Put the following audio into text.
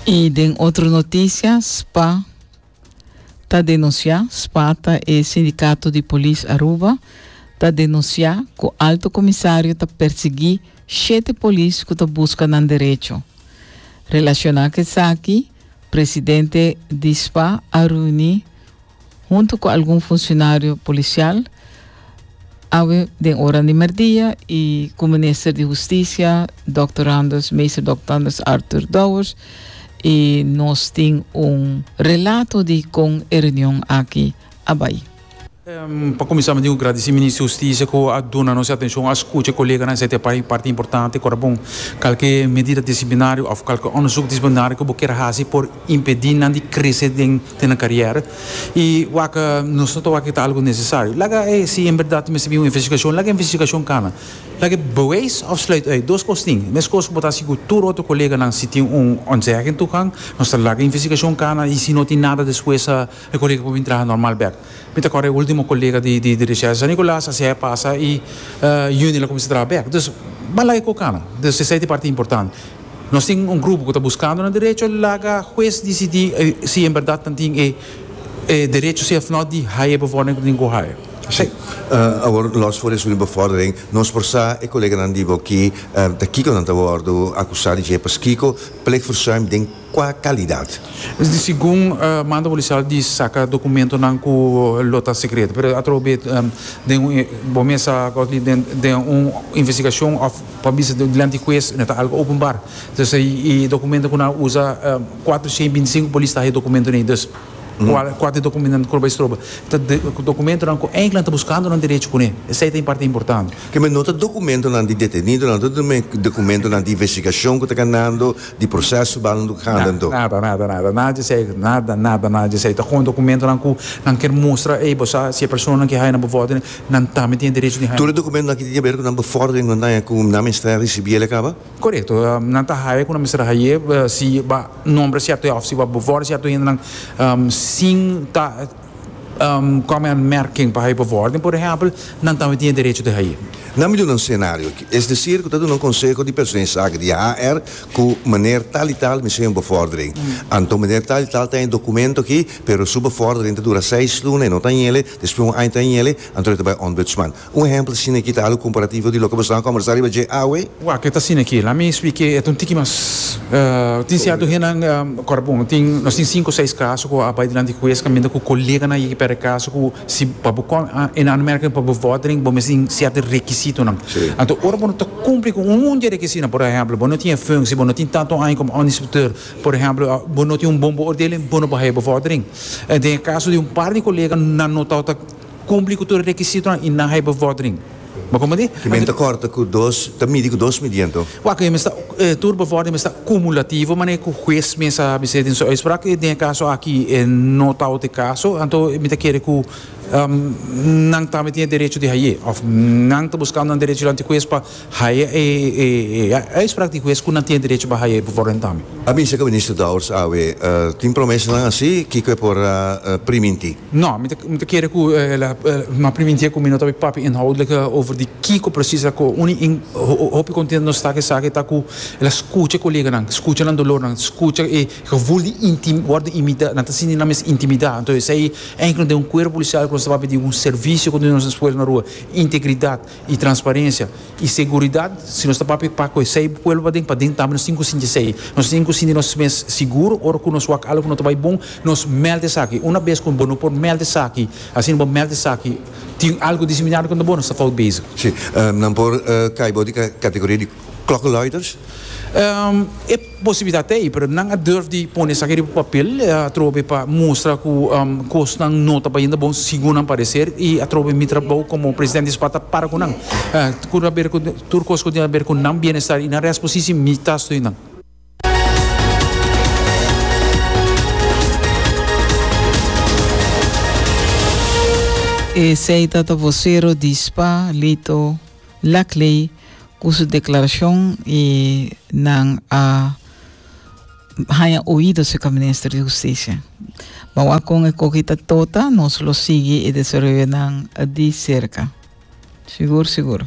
I den otro noticia, spa ta denuncia, spa ta e sindicato di polis Aruba, ta denuncia cu alto comisario ta persegui shete polis cu ta busca nan derecho. Relaciona cu esaki, presidente di spa a reuni huntu cu algun funcionario policial awe den oran di merdia y cu Minister di Husticia Dòkter Randers, Meester Dòkter Randers Arthur Douwers y nos tin un relato di con e reunion aki a bay. Pa cuminsa mi tin cu gradici Minister di Husticia cu a duna nos e atencion, a scucha e coleganan esaki ta e parti importante, ora bon calke medida disciplinario of calke onderzoek disciplinario cu bo kier haci por impedí nan di krese den te nan karièra i wak nos no ta wak ke ta algu nesesario laga e si en berdad mester bin un investigashon laga e investigashon kana laga e beweis òf sluit ùit dos kos tin mes kos ku bo ta hasi ku tur otro koleganan si tin un ontzèging tukan nos ta laga e investigashon kana i si no tin nada despues e kolega por bin traha normal bèk mi ta kòrda e ultimo kolega di di resèsa San Nikòlas a sièi a pasa i Yunil a kuminsá traha bèk dus ban laga e kos kana dus esei ta e parti importante. Nos tin un grupo cu ta buscando nan derecho, laga hues dicidi si en berdad nan tin e derecho si of no di haya e bevordering cu tin cu haya. Si. Awor, los for esun e bevordering, nos por sa e coleganan di bo ki ta kico nan ta wordo acusa di dje, paskico plegverzuim den cua calidad? Segun mando policial di saca documentonan cu lo ta secreto, pero atrobe den un, bo mes sa Godley, den un investigacion of. Pa bisa dilanti ku hues no ta algu openbar. Dus e dokumento ku nan a usa, kuater shei binti sinku polis ta haña e dokumentonan ei. Dus kual kuater dokumentonan ku lo bai stroba? Ta dokumentonan ku eindelijk nan ta buskando nan derecho kuné. Esei ta e parti importante. Ke men no ta dokumentonan di detenidonan, no ta men dokumentonan di investigashon ku ta ganando, di proseso su balnan ku ta ganando. Na, nada, nada, nada. Nada di esei. Nada, nada, nada di esei. Ta kon dokumentonan ku nan kier mustra, ey bo sa si e personanan ke haña nan bo vòt. nan tambe tin e derecho di haya. Tur e dokumentonan ki tin ke ber ku nan befòrdering ku nan ta haya ku nan mester a risibí el a kaba? Korekto, nan ta haya ku nan mester a hay'é si bo a nombra sierto hende òf si bo a befòrdera sierto hendenan sin ta kòm e anmèrking pa haya befòrdering, por ehèmpel, nan tambe tin e derecho di hay'é. Nan mi duna un senario aki, es desir ku ta duna un konseho di persona di saki di HR ku meneer tal i tal mester haya un befòrdering. Anto meneer tal i tal ta haya e dokumento aki, pero su befòrdering ta dura seis luna, e no ta haya el, Despues un aña ta hiele, anto el ta bai Ombudsman. Un ehempel asina aki ta alu comparativo di loke boso a conversa riba dje awe. Wak ke ta asina aki. Laat me spik e ta un tiki mas. Tin cierto hendenan ora bon tin nos tin cinco seis caso cu a bai dilanti di huez caminda cu coleganan yeki perde caso cu si pa bo con en aanmerking pa bo vordering bo mes tin cierto requisitonan. Anto ora bo no ta cumpli cu un munt di e requisitonan por ehemplo bo no tin e functie bo no tin tanto aña como onderinspecteur. Por ehemplo, bo no tin un bon beoordeling, bo no por haya bevordering. En den e caso di un par di colega nan no tau ta cumpli cu tur e requisitonan y nan haya bevordering. Bo comprende? Ki men ta corta cu dos, ta midi cu dos midiendo. Waak, e mester, e tur bevordering mester cumulativo, manera cu huez mes a bisé den su uitspraak. Y den e caso aki e no tau ta e caso, anto mi ta kere cu nan tambe tin e derecho di haye of nan ta buscando nan derechonan di huez pa. Haya e uitspraak di hues ku nan tin e derecho pa haya e por rentame. A bisa ku Minister Dowers awe tin promesanan asi kiko e por priminti. No, mi ta kere ku ela ma priminti ku mi no ta bin papia inhoudlik over di kiko presis a koe. Uni hopi kontentu nos ta ku esaki ta ku ela skucha e koleganan, skucha nan dolornan, skucha e gevoel di wòrdu intimida, nan ta sinti nan mes intimida. Anto esei enkele den un kuerpo polisial ku nos ta papia di un servisio kontinua nos esfuerso na rua, integridat. y transparencia y seguridad, si nos ta papia pa cu esey pueblo paden, paden tambe nos tin cu sinti esey. Nos tin cu sinti nos mes seguro ora cu nos wak algo no ta bay bon, nos meld esaki. Una bes cu bo no por meld esaki, asina bo meld esaki, tin algo diseminado contra bo, nos ta fout bezig. Si, nan por cay bo di categoria di klokkenluiders? E. Posibilidat ta ei, pero nan a durf di pone esaki riba papel atrobe pa mustra cu cosnan no ta bayendo bon segun nan parecer y atrobe mi trabou como presidente di SPAT ta para cu nan. Cu ta haber cu tur cos cu tin haber cu nan bienestar y nan resto posisi mi ta stui nan. Esey ta ta vocero di spa, Lito. Lakley ku su deklarashon i nan a haña oido serka Minister di Hustisia. Bawak kon e koki ta tota, nos lo sigui e desaroyonan di serka. Sigur, sigur.